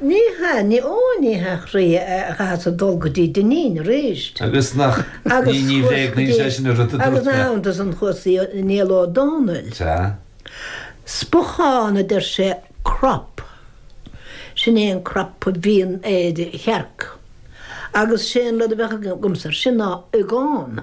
Ní hea, ní ó, ní hea, chroí a chaithfeas a dhul go dtí Dinneen arís. Agus nach, ní, ní bhréagnaíonn sé sin an rud a dúirt mé. Agus nach iontas an chúis í Niall Ó Dónaill. Sea. Spochán, a deir sé, crop. Sin é an crop a bhíonn ar chearc. Agus sé an rud a bheadh agamsa ar sin ná, iogán.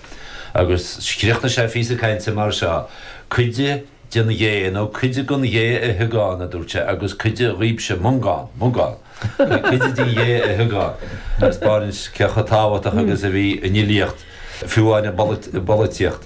Agus chríochnaigh sé a phíosa cainte mar seo, 'Cuid den ghé, nó cuid gon ghé a hiogán, a dúirt sé, 'agus cuid dhaoibhse, Mongán, Mugán, cuid den ghé a hiogán. Agus spáineann sé cé chomh tábhachtach agus a bhí an fhilíocht, fiú amháin i bpolaitíocht.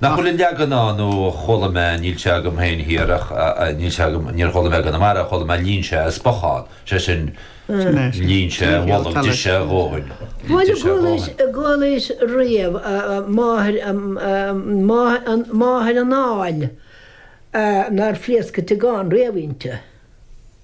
Nach bhfuil an leagan ann nó chuala mé, níl sé agam féin thiar ach, níl sé agam, níor chuala mé i gConamara, chuala mé líon sé a spochán, sé sin, líon sé a bholg, d'ith sé a dhóthain, d'ith sé a dhóthain. Bhuel, chuala mise riamh máthair, máthair an áil nár phléasc an t-iogán riamh inti.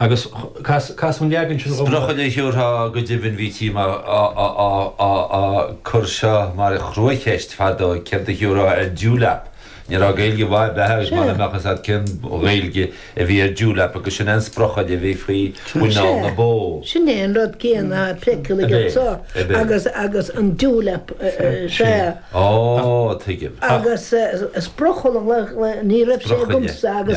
Agus cas an leagan sin dhom thú. Sprochaille a thiúrfá go deimhin. Bhítí á cur seo mar chruacheist fadó, céard a thiúrfá ar dewlap? Ní raibh Gaeilge mhaith ar bith agat mura mbeadh a fhios agat cén Ghaeilge a bhí ar dewlap agus sin é an sprochaille a bhí faoi mhuineál na bó. Sin é an rud céanna an sprochaille anseo agus an dewlap sea. Ó, tuigim. Agus sprochaille ní raibh sé agamsa agus